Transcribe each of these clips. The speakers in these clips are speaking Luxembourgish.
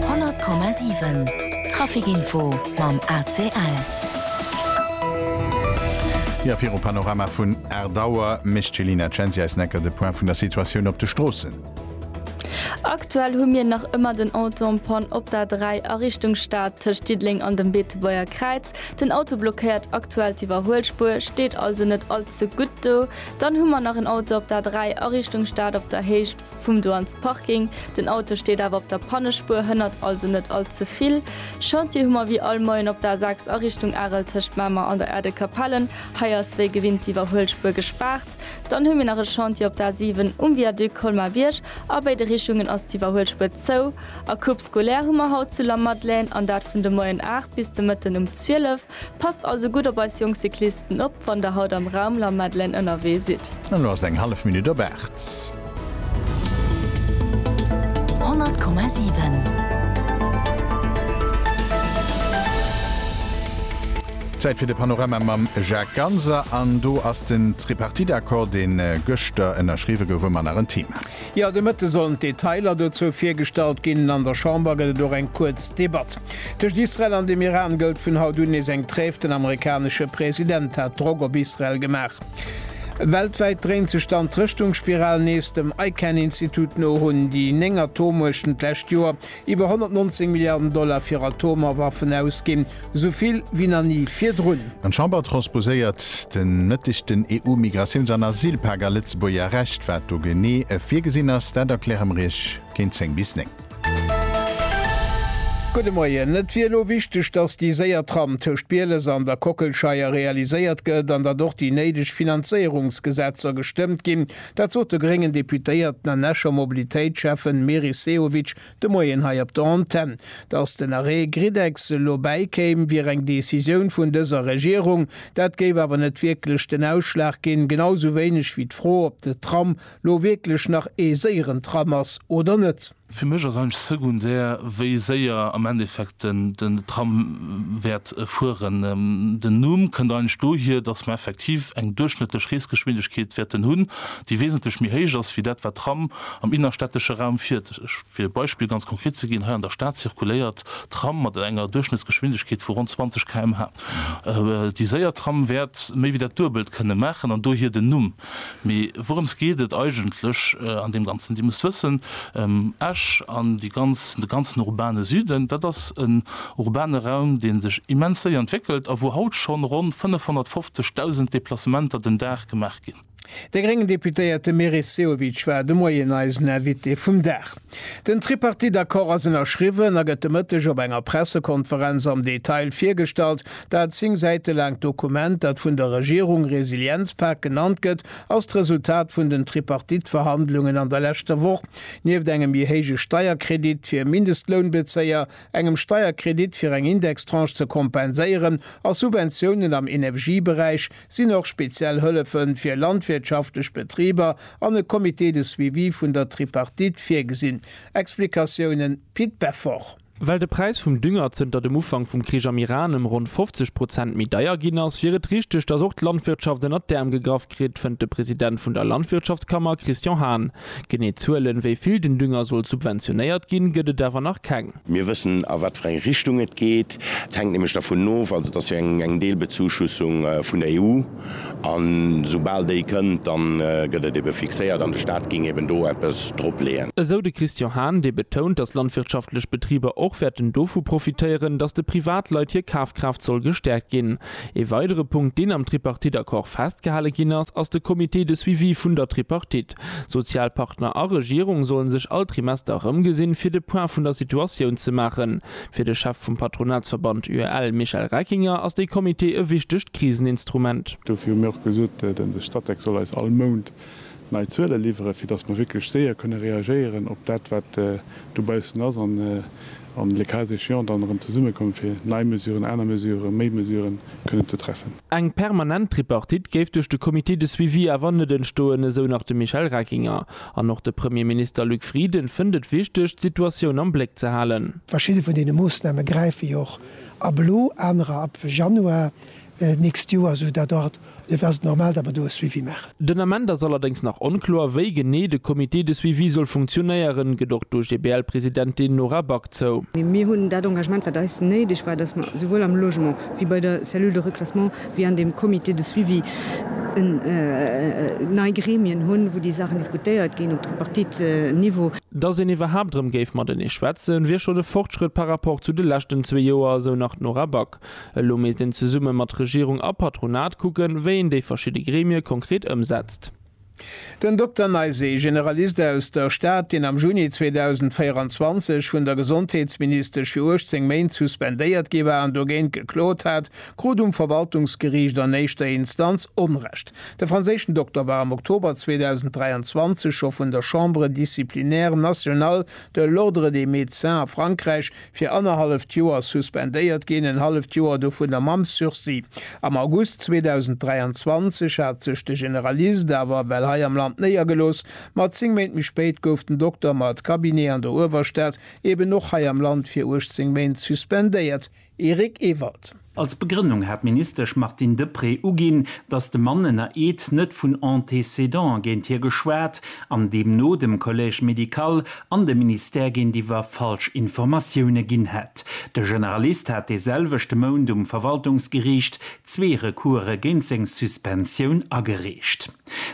100,7 Traficinfo mam ACL. Jo, virum Panorama vun aacht Auer mécht d'Jelina Censi eis Necker de Point vun der Situatioun op de Stroossen. Aktuell hu mir nach ëmmer den Entenpont op der 3 a Richtung Stad tëscht Diddeleng an dem Beetebuerger Kräiz. Den Auto blockéiert aktuell d'Iwwerhuelspuer, steet also net all ze gutt do. Dann hu mer nach en Auto op der 3 a Richtung Stad op der Héicht. Vum do an Parking, den Auto steet awer op der Pannespuer, hënnert also net all ze vill. Chantier hu mer wéi all Moien op der A6 a Richtung Arel tëscht Mamer an der Erdekapellen. Hei ass wéi gewinnt d'Iwwerhuelspuer gespaart. Dann hu mir nach e Chantier op der A7 um Viaduc Colmar-Bierg. A béide Richungen ass d'Iwwerhuelspuer zou. A Coupe scolaire hu mer haut zu Lamadelaine, an dat vun de Moien 8 bis de Mëtten um 12. Passt also gutt op eis jonk Cyclisten op, wann der haut am Raum La Madeleine ënnerwee sidd. An lo ass et eng hallef Minutt op 8. 100,7. Zäit fir de Panorama mam Jacques Ganser. An do ass den Tripartite-Accord, dee gëschter ënnerschriwwe gouf, ëmmer nach en Thema. Jo, de Mëtte sollen d'Detailer dozou virgestallt ginn. An der Chamber gëtt et och eng kuerz Debatt. Tëscht Israel an dem Iran gëllt vun haut un nees eng Tréif. Den amerikanesche President hat Drock op Israel gemaach. Weltwäit dréint sech dann d'Rëschtungsspiral nees. Dem ICAN-Institut no hunn déi néng Atommuechten d'lescht Joer iwwer 119 Milliarden Dollar fir Atomerwaffen ausginn, esou vill wéi nach ni virdrun. An d'Chamber transposéiert de Mëtteg den EU-Migratiouns an Asylpak a Lëtzebuerger Recht. Wat do genee virgesinn ass, dat erkläre mer Iech géint 10 bis 9. Gudde Moien. Et wier elo wichteg, datt déi séier Tram tëscht Bieles an der Kockelscheier realiséiert gëtt an datt och déi néideg Finanzéierungsgesetzer gestëmmt ginn, Dat sot de gréngen Deputéierten an Escher Mobilitéitsschäffen Meris Sehovic de Moien hei op der Antenn. Datt den Arrêt Griddex elo bäikéim, wier eng Decisioun vun dëser Regierung. Dat géif awer net wierklech den Ausschlag ginn, genau sou wéineg wéi d'Fro, ob de Tram lo wierklech nach ee séieren Tram ass oder net. Fir mech ass eigentlech secondaire, wéi séier am Endeffekt den Tram wäert fueren. Den Numm kënnt eigentlech dohier, dass mer effektiv eng duerchschnëttlech Reesgeschwindegkeet wäerten hunn, déi wesentlech méi héich ass wéi dat, wat Tram am innerstädtesche Raum fiert. Fir e Beispill ganz konkret ze ginn, Hei an der Stad zirkuléiert d'Tram mat enger Duerchschnëttsgeschwindegkeet vu ronn 20 km/h. Déi séier Tram wäert méi wéi dat Duebelt kënne maachen an dohier den Numm. Mee wourëms geet et eigentlech an deem Ganzen? Dir musst wëssen, Esch an de ganzen urbane Süden, dat ass en urbane Raum, dee sech immens séier entwéckelt a wou haut schonn ronn 550.000 Deplacementer den Dag gemaach ginn. De gréngen Deputéierte Meris Sehovic war de Moien eisen Invité vum Dag. Den Tripartite-Accord ass ënnerschriwwen a gëtt de Mëtteg op enger Pressekonferenz am Detail virgestallt. Dat zéng Säite laangt Dokument, dat vun der Regierung Resilienzpak genannt gëtt, ass d'Resultat vun den Tripartite-Verhandlungen an der leschter Woch. Nieft engem je héije Steierkredit fir Mindestlounbezéier, engem Steierkredit fir eng Indextranche ze kompenséieren a Subventiounen am Energieberäich, sinn och speziell Hëllefe fir landwirtschaftlech Betriber an e Comité de suivi vun der Tripartite virgesinn, Explikatiounen, Pit Beffort. Well de Präis vum Dünger zënter dem Ufank vum Krich am Iran ëm ronn 50 Prozent méi deier ginn ass, wier et richteg, datt och d'Landwirtschaft ënnert d'Äerm gegraff kritt, fënnt de President vun der Landwirtschaftskammer Christian Hahn. Genee Zuelen, wéi vill den Dünger soll subventionéiert ginn, gëtt et awer nach keng. Mir wëssen, a wat fir eng Richtung et geet. Et hänkt nämlech dervun of, also et ass jo eng Deelbezuschussung vun der EU, a soubal déi kënnt, da gëtt et ebe fixéiert an de Stat géing eben do eppes dropleeën. Esou de Christian Hahn, dee betount, datt landwirtschaftlech Betriber och wäerten dovu profitéieren, datt de Privatleit hir Kafkraaft soll gestäerkt ginn. Ee weidere Punkt, deen am Tripartite-Accord festgehale ginn ass, ass de Comité de suivi vun der Tripartit. Sozialpartner a Regierung sollen sech all Trimester erëmgesinn, fir de Point vun der Situatioun ze maachen. Fir de Chef vum Patronatsverband UEL, Michel Reckinger, ass dee Comité e wichtegt Kriseninstrument. Dofir hu mir och gesot, de Statec soll eis all Mount nei Zuele liwweren, fir datt mer wierklech séier kënne reagéieren op dat, wat dobaussen ass an le cas échéant dann erëm zesummekommen, fir nei Mesuren, aner Mesuren, méi Mesuren kënnen ze treffen. Eng permanent Tripartite géif duerch de Comité de suivi awer net entstoen, esou nach de Michel Reckinger. An och de Premierminister Luc Frieden fënnt et wichteg, d'Situatioun am Bléck ze halen. Verschidde vun deene Moossname gräife jo och ab elo, anerer ab Januar d'nächst Joer, esou datt och do wäert et normal, datt mer do e Suivi maachen. Den Ament ass allerdéngs nach onkloer, wéi genee de Comité de suivi soll funktionéieren, gëtt och d'OGBL-Presidentin Nora Back zou. Mee mir hunn dat Engagement, wat eis néideg war, dass mer souwuel am Logement wéi bei der Cellule de reclassement wéi an deem Comité de suivi nei Gremien hunn, wou déi Saachen diskutéiert ginn op Tripartite-Niveau. Dass een iwwerhaapt erëm géif matenee schwätzen, wier schonn e Fortschrëtt par rapport zu de leschten zwee Joer, esou nach d'Nora Back. Elo misst een zesumme mat Regierung a Patronat kucken, wéi een déi verschidde Gremie konkret ëmsetzt. Den Dokter Neiséé, Generalist aus der Stad, deen am Juni 2024 vun der Gesondheetsministesch fir 18 Méint suspendéiert gi war an dogéint geklot hat, krut um Verwaltungsgeriicht an éischter Instanz Onrecht. De franséischen Dokter war am Oktober 2023 scho vun der Chambre disciplinaire nationale de l'Ordre des médecins a Frankräich fir annerhalleft Joer suspendéiert ginn, en halleft Joer dovunner mam Sursis. Am August 2023 hat sech de Generalist awer well hei am Land néiergelooss, ma zéng Méint méi spéit gouf den Dokter mat Cabinet an der Uewerstad eben och hei am Land fir 18 Méint suspendéiert. Eric Ewald. Als Begrënnung hat d'Ministesch Martine Deprez uginn, datt de Mann ënner Eed net vun Antécédant géint hie geschwat an deemno dem Collège médical an dem Ministère géintiwwer falsch Informatioune ginn hätt. De Generalist hat dee selwechte Mount um Verwaltungsgeriicht zwee Recourse géint seng Suspensioun agereecht.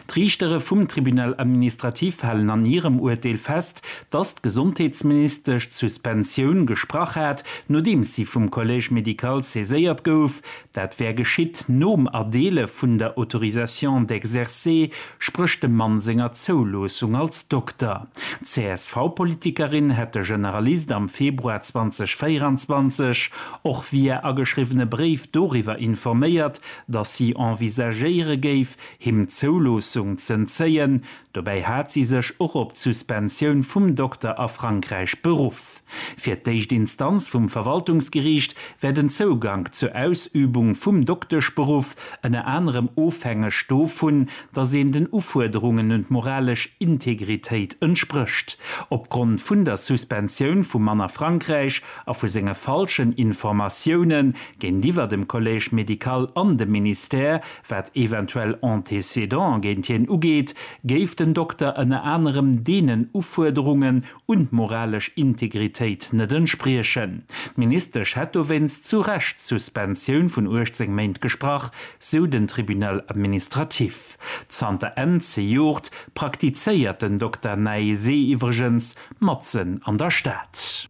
D'Riichtere vum Tribunal administratif halen an hirem Urteel fest, dass d'Gesondheetsministesch d'Suspensioun gesprach hat, nodeems si vum Collège médical saiséiert gouf. Dat wär geschitt nom Erdeele vun der Autorisation d'exercer, spréch dem Mann senger Zouloossung als Dokter. D'CSV-Politikerin hätt de Generalist am Februar 2024 och via ageschriwwene Bréif doriwwer informéiert, datt si envisagéiere géif, him d'Zouloossung z'entzéien, dobäi hat si sech och op d'Suspensioun vum Dokter a Frankräich beruff. Fir d'éischt Instanz vum Verwaltungsgeriicht wär den Zougank zur Ausübung vum Dokteschberuff ënner anerem ofhängeg dovun, datt een den Ufuerderungen un d'moralesch Integritéit entsprécht. Opgrond vun der Suspensioun vum Mann a Frankräich a vu senge falschen Informatioune Géintiwwer dem Collège médical an dem Ministère, wat eventuell Antécédant géint hien ugeet, géif den Dokter ënner anerem deenen Ufuerderungen un d'moralesch Integritéit net entspriechen. D'Ministesch hätt dowéinst zu Recht d'Suspensioun vun 18 Méint gesprach, sou den Tribunal administratif. Zanter Enn zejoert praktizéiert den Dokter Naesé iwwregens matzen an der Stad.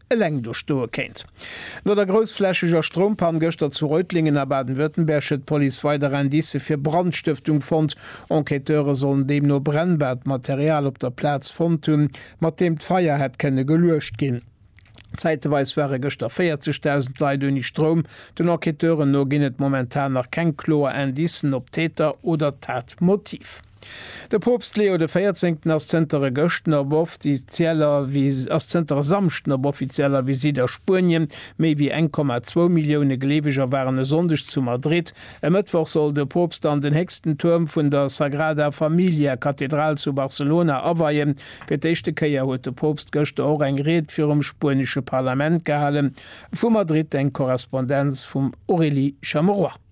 eleng do stoe kéint. No der groussflächeger Stroumpann gëschter zu Reutlingen a Baden-Württemberg huet d'Police weider Indice fir Brandstëftung fonnt. Enquêteure sollen deemno brennbaart Material op der Plaz fonnt hunn, mat deem d'Feier hätt kënne geluecht ginn. Zäiteweis ware gëschter 40.000 Leit ouni Stroum. Den Enquêteuren no ginn et momentan nach keng kloer Indicen op Täter oder Tatmotiv. De Poopst Leo de Véierzéngten ass zënter e gëschten op offizieller ass zënter e Samschden op offizieller Visitt a Spuenien. Méi wéi 1,2 Millioune Gleeweger waren e Sonndeg zu Madrid. E Mëttwoch soll de Poopst dann den héchsten Tuerm vun der Sagrada Familia Kathedral zu Barcelona aweien. Fir d'éischte Kéier huet de Poopst gëschter och eng Ried virum spuenesche Parlament gehalen. Vu Madrid eng Korrespondenz vum Aurélie Chamerois.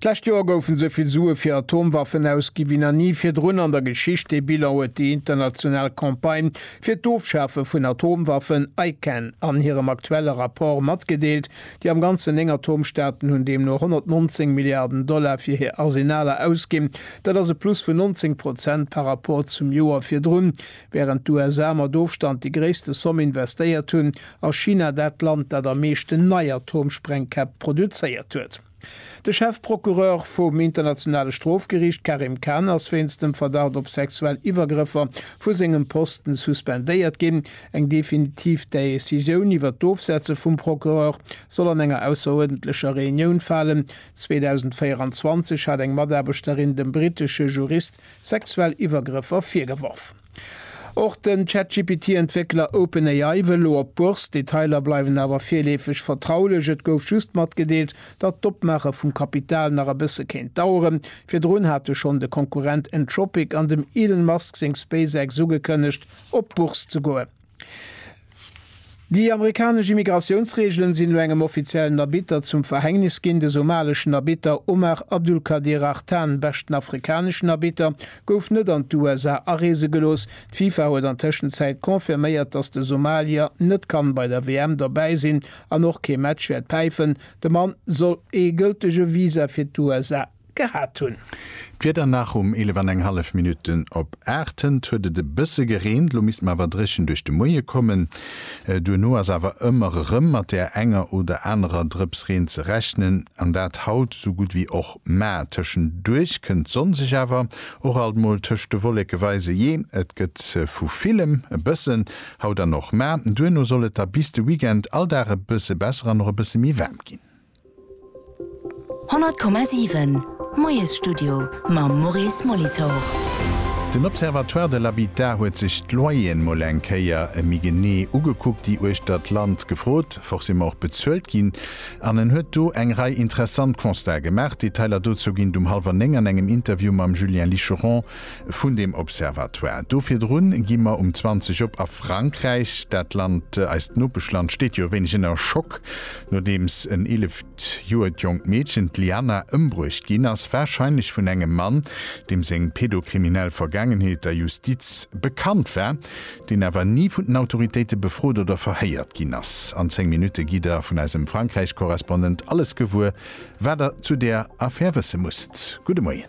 D'lescht Joer goufen esou vill Sue fir Atomwaffen ausgi wéi nach ni virdrun an der Geschicht. Dee Bilan huet déi international Campagne fir d'Ofschafe vun Atomwaffen, ICAN, an hirem aktuelle Rapport matgedeelt. Déi am Ganzen néng Atomstaaten hunn deemno 119 Milliarden Dollar fir hir Arsenaler ausginn. Dat ass e Plus vun 19 Prozent par Rapport zum Joer virdrun. Wärend d'USA mat Ofstand déi gréisste Somm investéiert hunn, ass China dat Land, dat am meeschten nei Atomsprengkäpp produzéiert huet. De Chefprocureur vum Internationale Strofgeriicht Karim Khan ass wéinst dem Verdacht op sexuell Iwwergrëffer vu sengem Posten suspendéiert ginn. Eng definitiv Decisioun iwwer d'Ofsetze vum Procureur soll an enger ausseruerdentlecher Reunioun falen. 2024 hat eng Mataarbechterin dem brittesche Jurist sexuell Iwwergrëffer virgeworfen. Och den ChatGPT-Entwéckler OpenAI wëll elo op d'Bourse. D'Detailer bleiwen awer virleefeg vertraulech. Et gouf just matgedeelt, datt d'Opmaache vum Kapital nach e bësse kéint daueren. Virdrun hate schonn de Konkurrent Anthropic an dem Elon Musk seng SpaceX ugekënnegt, op d'Bourse ze goen. Déi amerikanesch Immigratiounsreegelen sinn elo engem offiziellen Arbitter zum Verhängnis ginn. De somaleschen Arbitter Omar Abdulkadir Artan, beschten afrikaneschen Arbitter, gouf net an d'USA areese gelooss. D'FIFA huet an Tëschenzäit confirméiert, datt de Somalier net kann bei der WM dobäi sinn an och kee Match wäert päifen. De Mann soll ee gëltege Visa fir d'USA. gehat hunn. D'Wieder nach um 11 an eng hallef Minutten op 8. Hënt huet et e bësse gereent, lo misst mer awer dréchen duerch de Moie kommen. Duerno ass awer ëmmer erëm mat där enger oder anerer Drëps Reen ze rechnen an dat haut sou gutt wéi och mar. Tëschenduerch kënnt d'Sonn sech awer och alt mol tëscht de Wolleke weisen, jee et gëtt vu villem e bëssen, haut an och mar. Duerno soll et da bis de Weekend all Dag e bësse besser an och e bësse méi waarm ginn. 100,7 Moiesstudio mam Maurice Molitor. Den Observatoire de l'habitat huet sech d'Loyeren mol eng Kéier méi genee ugekuckt, déi uechter d'Land gefrot, forcément och bezuelt ginn. An en huet do eng Rei interessant Constatë gemaach. D'Detailer dozou ginn et um hallwer néng an engem Interview mam Julien Licheron vun deem Observatoire do. Virdrun gi mer um 20 op a Frankräich. Dat Land, eist Nopeschland, steet jo e wéineg ënner Schock, nodeems en eeleft Joer jonkt Meedchen, d'Liana, ëmbruecht ginn ass, warscheinlech vun engem Mann, deem seng pedokriminell Vergaangenheet der Justiz bekannt war, deen awer ni vun den Autoritéite befrot oder verhéiert ginn ass. An 10 Minutte gitt Der vun eisem Frankräich-Korrespondent alles gewuer, wat Der zu där Affär wësse musst. Gudde Moien.